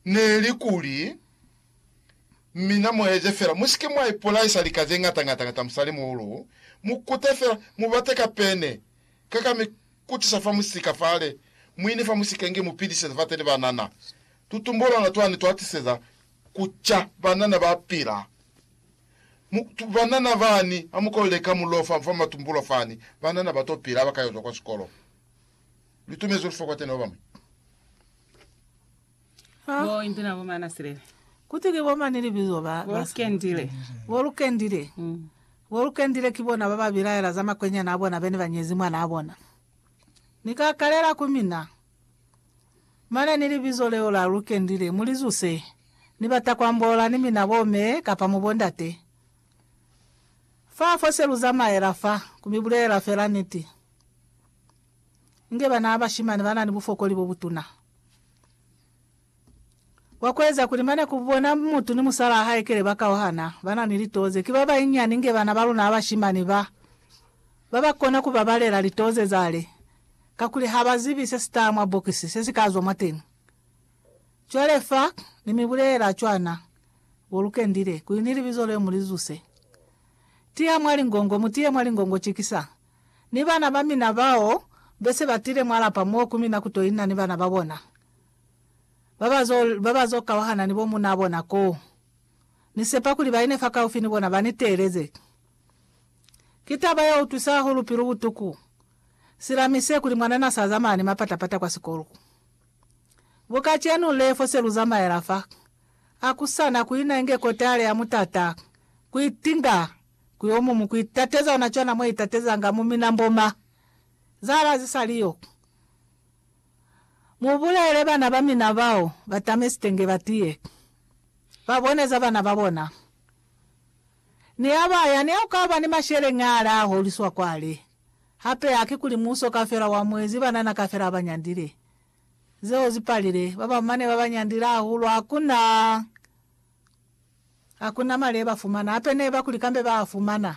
neli kuli, Mina mueze fela, musike mwa ipolaisa lika zeñata ngata ngata musalimuhulu, mukute fela, mubate ka pene, ka ka mi kutisa fa musika fale, muine fa musika inge mupidiseza fateni banana. Tutumbolwana twani twatiseza kuca banana bapila. Mu, tu, banana bani, hamukolele ka mulofa fa matumbulo fani, banana bato pila abakayozwa kwa sikolo. Lutumezi olufa kwa tena babañwi. Ah. Bo inti na bo mana silele. Kuti ki bo mani libizo ba bo lukendile. Bo lukendile. Mm. Bo lukendile ki bona ba ba bilaela za makwenyana a bona bene ba nyezi mwana a bona. Ni ka kalela ku mina. Mane ni libizo leo la lukendile mu li zuse. Ni bata ku ambola ni mina bo me kapa mu bo ndate. Fa fo se lu zamaela fa, ku mi bulelela fela niti. inge bana ba bashimani ba na ni bufokoli bo butuna bwa ku eza kuli mane ku bona mutu ni musalaa hae kele ba kauhana. Ba na ni litoo ze ki ba banyinyani inge bana ba luna ba bashimani ba ba ba kona ku babalela litoo ze za le, kakuli ha ba zibi se si taha mwa bokisi se si ka zwa mwateni. Cwale fa ni mi bulelela cwana, bo lu kendile, kuli ni libizo leo mu li zuse. Tiha mwa lingongo, mu tihe mwa lingongo, cikisang ni bana ba mina bao be se ba tile mwa lapa mo ku mina ku to inna ni bana ba bona ba ba zo, ba ba zo kauhana ni bo munaa bona koo. Ni sepa kuli ba ine fakaufi ni bona ba ni teeleze. Ki taba ye utwisa hahulu pilu butuku sila mi se kuli mwanana sa zamaya ni mapata-pata kwa sikolo. Bu kacenu le, fo se lu zamaela fa, a ku sa na ku ina inge kotale ya mutata ku itinga Ku yo mumu ku itateza ona cwana mwa itatezanga mu minambo ma zahala ze sa li yo. Mu bulele bana ba mina bao ba tame sitenge ba tiye, ba bone za bana ba bona. Ni ha ba ya, ni ha ku ka ba ni masheleñaale a holiswa kwale. Hape haki kuli muuso kafela wa mwezi banana kafela ba nyandile. Zeo zi palile, ba ba mane ba ba nyandile hahulu ha ku na. Hakuna mali yebafumana, hape neba kuli kambe baafumana.